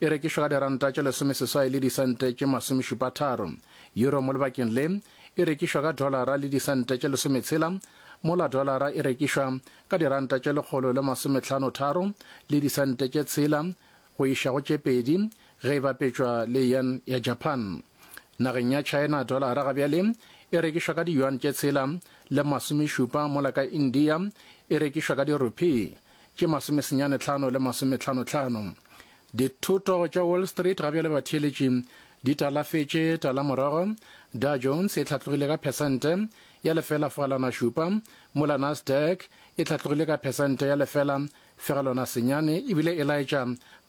e rekišwa ka diranta tše lesomeseswai le disente tše masomešupatharo, euro mo lebakeng le e rekišwa ka dolara le disente tše lesometshela, mola dolara e rekišwa ka diranta tše lekgolo le masometlhano-tharo le disente tše tshela go iša go tše pedi ge e bapetšwa le yen ya Japan. Nageng ya China dolara ga bjale e rekišwa ka diyuan tše tshela le masomešupa mola ka India e rekišwa ka dirupee tše masomesenyane tlhano le masometlhanotlhano. Dithoto tša Wall Street ga bjale batheeletši di talafetše talamorago, Dow Jones e hlatlogile ka phesente ya lefela fegelwana šupa, mola Nasdaq e hlatlogile ka phesente ya lefela fegelwana senyane ebile e laetša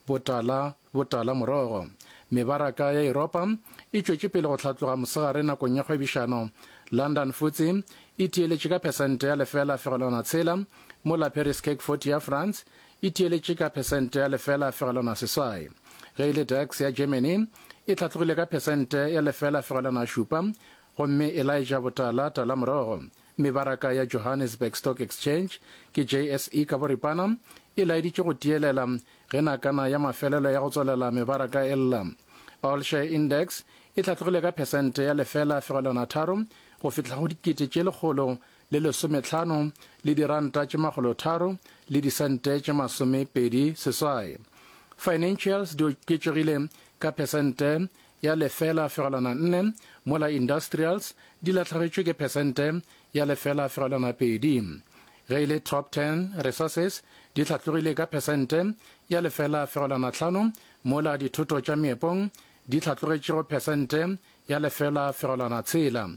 botala Botala morogo. Mebaraka ya Yuropa e tšwetše pele go hlatloga mosegare nakong ya kgwebišano. London Futse e theeletše ka phesente ya lefela fegelwana tshela, mola Paris CAC 40 ya France e theeletše ka phesente ya lefela fegelwana seswai. Ge e le DAX ya Germany e hlatlogile ka phesente ya lefela fegelwana šupa gomme e laetša botala tala morogo. Mebaraka ya Johannesburg Stock Exchange, ke JSE ka boripana, e laeditše go tiyelela ge nakana ya mafelelo ya go tswalela mebaraka e lla. All Share Index e hlatlogile ka phesente ya lefela fegelwana tharo go fihla go dikete tše lekgolo le lesometlhano le diranta tše makgolo tharo le disente tše masome pedi seswai. Financials di oketšegile ka phesente ya lefela fegelwana nne, mola Industrials di lahlegetšwe ke phesente ya lefela fegelwana pedi. Ge e le Top Ten, Resources di hlatlogile ka phesente ya lefela fegelwana tlhano, mola dithoto tša meepong di hlatlogetšego phesente ya lefela fegelwana tshela.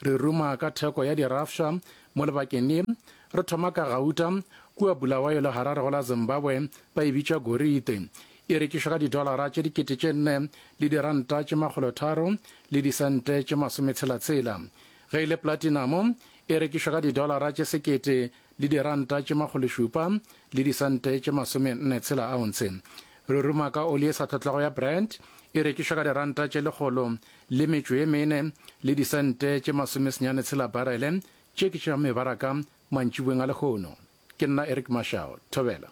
Re ruma ka theko ya dirafša mo lebakeng le. Re thoma ka gauta, kua Bulawayo le Harare go la Zimbabwe ba e bitša gorite, E rekišwa ka didolara tše dikete tše nne le diranta tše makgolo tharo le disente tše masometshela-tshela. Ge e le platinamo, e rekišwa ka didolara tše sekete le diranta tše makgološupa le disente tše masomenne tshela aontshe. Ruruma ka oli e sa tlhotlwago ya Brent e rekišwa ka diranta tše lekgolo le metšo ye mene le disente tše masomesenyane tshela barele. Tše ke tša mebaraka mantšiboeng a lehono. Ke nna Eric Mashao. Thobela.